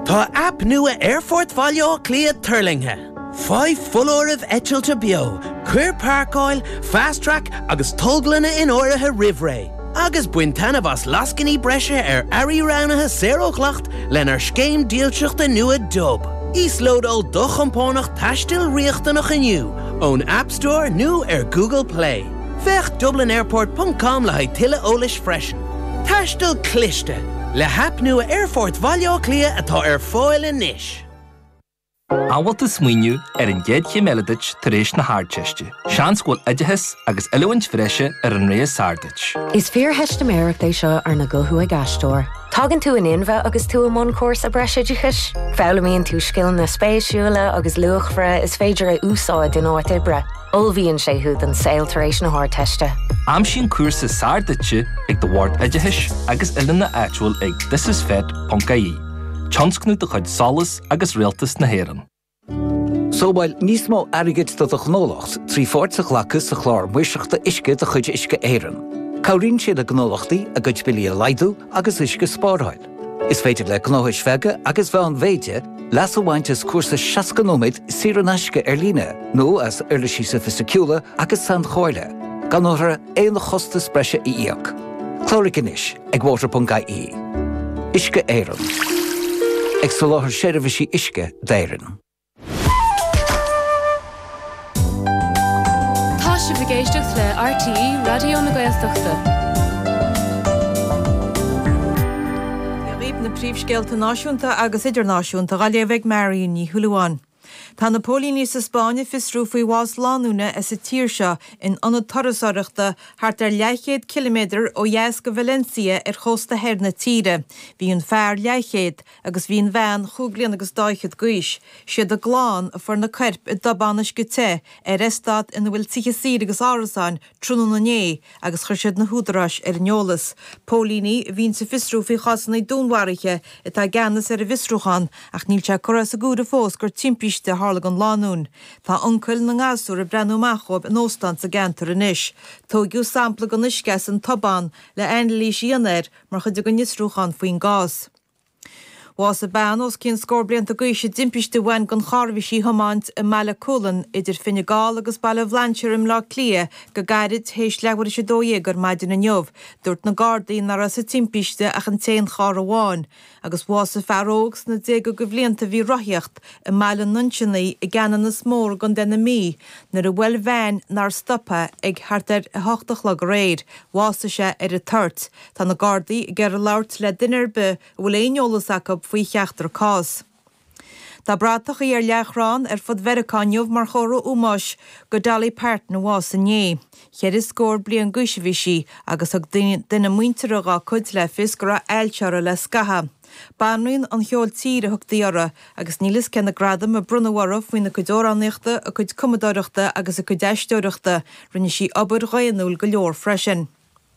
Tá aip nua Aerfort Bhaile Átha Cliath tuirlingthe. Faigh foláirimh eitilte beo, cuir páirceáil, Fast Track agus tolglanna in áirithe roimh ré, agus bain taitneamh as lascainí breise ar earraí roghnaithe saor ó dhleacht lenár scéim dílseachta nua Dub. Íoslódáil do chompánach taistil riachtanach inniu ón App Store nó ar Google Play. Féach dublinairport ponc com le haghaidh tuilleadh eolais freisin. Taisteal Cliste, le haip nua Aerfort Bhaile Átha Cliath atá ar fáil anois. An bhfuil tú ag smaoineamh ar an gcéad chéim eile duit tar éis na hArdteiste? Seans go bhfuil oideachas agus oiliúint bhreise ar an rogha is fearr duit. Is fíortheistiméireacht é seo arna guthú ag aisteoir. Tagann tú in inmhe agus tú i mbun cúrsa breisoideachais. Foghlaimíonn tú scileanna spéisiúla agus luachmhara is féidir a úsáid in áit oibre. Ullmhaíonn sé thú don saol tar éis na hArdteiste. Aimsigh an cúrsa is fearr duit ag do Bhord Oideachais agus Oiliúna áitiúil ag thisisfet.ie, tionscnamh de chuid SOLAS agus Rialtas na hÉireann. Sábháil níos mó airgid do do ghnólacht trí pháirt a ghlacadh sa Chlár Maoirseachta Uisce de chuid Uisce Éireann. Cabhraíonn sé le gnólachtaí a gcuid billí a laghdú agus uisce a spáráil. Is féidir le gnóthais bheaga agus mheánmhéide leas a bhaint as cúrsa 60 nóiméad saor in aisce ar líne nó as uirlisí sofaisticiúla agus sainchomhairle, gan orthu aon chostas breise a íoc. Cláraigh anois ag water.ie. Uisce Éireann. Ag soláthar seirbhísí uisce d'Éirinn. Tá sibh ag éisteacht le RTÉ Raidió na Gaeltachta. Seo dhaoibh na príomhscéalta náisiúnta agus idirnáisiúnta á léamh ag Marion Ní Shúilleabháin. Tá na póilíní sa Spáinn ag fiosrú faoi bhás lánúine as an tír seo in ionad turasóireachta thart ar leathchéad ciliméadar ó dheas de Valencia ar chósta thoir na tíre. Bhí an fear, leathchéad, agus bhí an bhean chúig bhliana agus daichead d'aois. Siad a gclann a fuair na coirp i dtobán uisce te ar eastát ina bhfuil tithe saoire agus árasáin tráthnóna inné agus chuir siad na húdaráis ar an eolas. Póilíní a bhíonns ag fiosrú faoi chásanna dúnmharaithe atá i gceannas ar an bhfiosrúchán ach níl sé curtha as an gcomhaireamh fós gur timpiste a tharla don lánúin. Tá uncail na ngasúr ag breathnú amach dhóibh in óstán sa gceantar anois. Tóigeadh sampla den uisce as an tobán le anailís a dhéanamh air mar chuid den fhiosrúchán faoin gcás. Bhásaigh bean os cionn scór blianta d'aois i dtimpiste a bhain don charr a bhí sí a thiomáint i mBaile Cúlann idir Fine Gall agus Baile Bhlainséir i mBleá Cliath go gairid théis leathuair théis a dó dhéag ar maidin inniu. Dúirt na Gardaí nach raibh sa timpiste ach an t-aon charr amháin agus bhásaigh fear óg sna déaga de bhlianta a bhí ag rothaíocht i mBaile an Nuinseannaigh i gCeannanas Mór i gContae na Mí nuair a bhuail veain nár stopadh é thart ar 8 a chlog aréir. Bhásaigh sé ar an toirt. Tá na Gardaí ag iarraidh labhairt le duine ar bith a bhfuil aon eolas acu faoi cheachtar cás. Tá bratachaí ar leathchrann ar fud Mheiriceá inniu mar chomhartha ómóis go Dolly Parton a bhásaigh inné. Ceithre scór bliain d'aois a bhí sí agus thug duine muinteartha dá cuid le fios go raibh ailse uirthi le scaitheamh. Banríon an cheoil tíre a thugtaí uirthi agus níl a fhios cé na gradaim a bronnadh uirthi faoina cuid amhránaíochta, a cuid cumadóireachta agus a cuid aisteoireachta, rinne sí obair dhaonnúil go leor freisin.